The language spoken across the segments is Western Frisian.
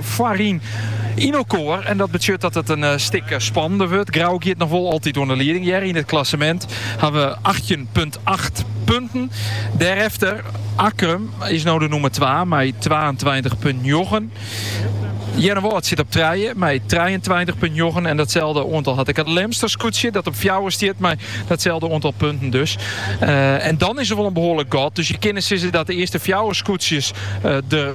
foaryn yn elkoar. En dat betsjut dat it in stik spannender wurdt. Grou giet noch wol altyd oan de lieding. Hja yn it klassemint hawwe achttjin punt acht punten. Dêrefter Akkrum is no de nûmer twa mei twaentweintich punt njoggen. Earnewâld sit op trije mei trijeentweintich punt njoggen. En datselde oantal hat ek it Lemster skûtsje dat op fjouwer stiet mei datselde oantal punten dus. En dan is der wol in behoarlik gat. Dus je kinne sizze dat de earste fjouwer skûtsjes der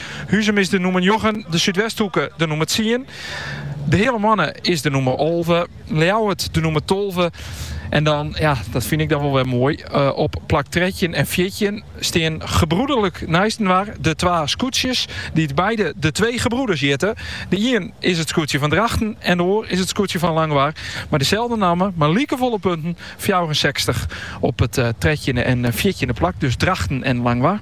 Huzum is de nûmer njoggen, de Súdwesthoeke de nûmer tsien, de Heale Moanne is de nûmer alve, Ljouwert de nûmer tolve. En dan, ja, dat fyn ik dan wel weer mooi, eh, op plak 13 en 14 stean gebroederlik neistenwaar de twa skûtsjes, dy't beide de twee gebroeders hjitte. De ien is it skûtsje fan Drachten en de oar is it skûtsje fan Langwaar, mei deselde namme, mei likefolle punten, fjouwerensechstich op it eh, trettjinde en eh, fjirtjinde plak, dus Drachten en Langwaar.